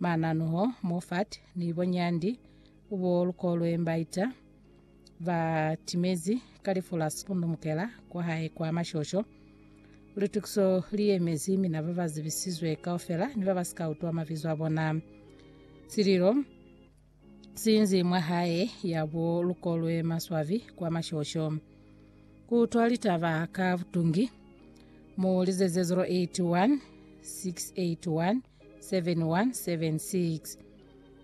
Mananuho, Moffat ni Bonyandi ubo lukolwe mbaita ba timezi ka lifu la sikunumukela kwa hae kwa mashosho. Litukiso li yemezi mina ba ba zibisizwe kaufela ni ba ba sika utwa mabizo a bona. Sililo siinzi mwa hae ya bo lukolwe maswabi kwa mashosho. Ku utwa litaba ka butungi mu lizeze 081 681 7176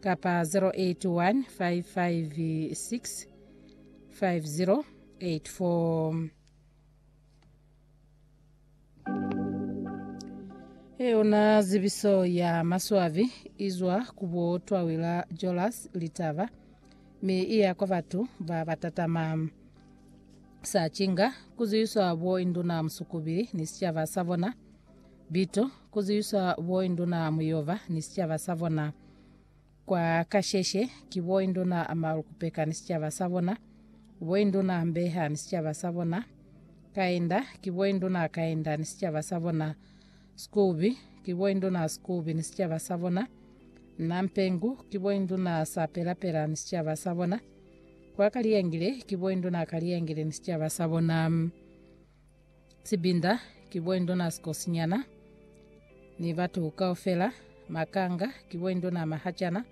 kapa 0815565084. Eyona zibiso ya maswabi izwa ku bo twawila Jolas litaba, mi iya kwa batu ba batatama. Sa cinga, kuziyiswa bo induna musukubili ni sicaba sa bona, Bito, ku zwiswa bo induna mu Yehova ni sicaba sa bona. Kwa kasheshe, ki bo induna ma Rukupeka ni sicaba sa bona, bo induna Mbeha ni sicaba sa bona, Kaenda, ki bo induna Kaenda ni sicaba sa bona, Skubi, ki bo induna Skubi ni sicaba sa bona, Nampengu, ki bo induna Sapelapela ni sicaba sa bona, kwa Kaliyengile, ki bo induna Kaliyengile ni sicaba sa bona. Sibinda ki boindona sikosinyana ni batu kaufela, Makanga ki boindona mahacana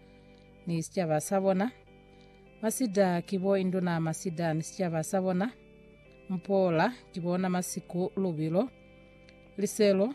ni sicaba sa bona, Masida ki boindona masida ni sicaba sa bona, Mpola ki bona masiku lubilo, Liselo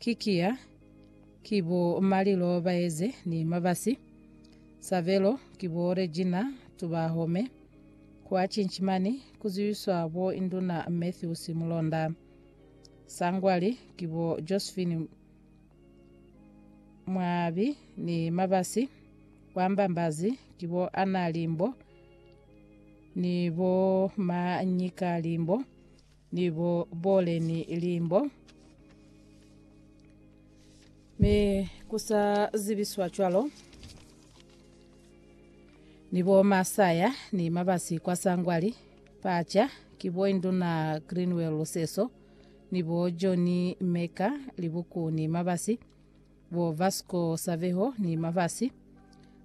Ki kiya, ki bo Malilo Baeze ni Mabasi, Savelo, ki bo Regina Tubahome. Kwa cinci mani ku ziwiswa bo Induna Matthews Mulonda. Sangwali, ki bo Josephine Mwabi ni Mabasi. Kwa Mbambazi, ki bo Anna Limbo ni bo Manyika Limbo. ni bo bole ni limbo, mi ku sa zibiswa cwalo, ni bo masaya ni mabasi kwa Sangwali, Pacha, ki bo Induna Greenwell Luseso, ni bo Johnny Meka, Libuku ni mabasi. bo Vasco Saveho ni Mavasi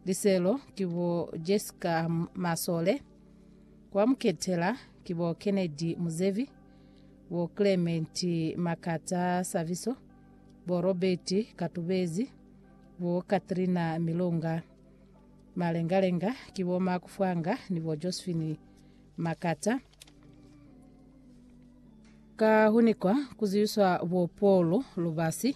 Liselo ki bo Jessica Masole, kwa Muketela ki bo Kennedy Muzevi, bo Clement Makata Saviso, bo Robert Katubezi, bo Katrina Milonga. Malengalenga ki bo Mark Fwanga ni bo Josephine Makata. Ka hunikwa kuziwiswa bo Paul Lubasi,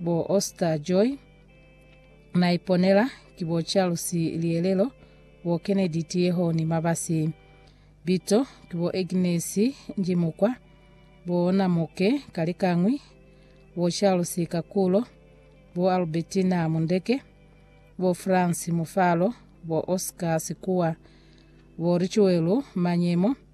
bo Oscar Joy, Naiponela, ki bo Charles Lielelo, bo Kennedy Tieho ni Mabasi. Bito ki bo Agnes Njimukwa, bo Namoke Kalikañwi, bo Charles Kakulo, bo Albertina Mundeke, bo France Mufalo, bo Oscar Sikuwa, bo Richuelu Manyemo,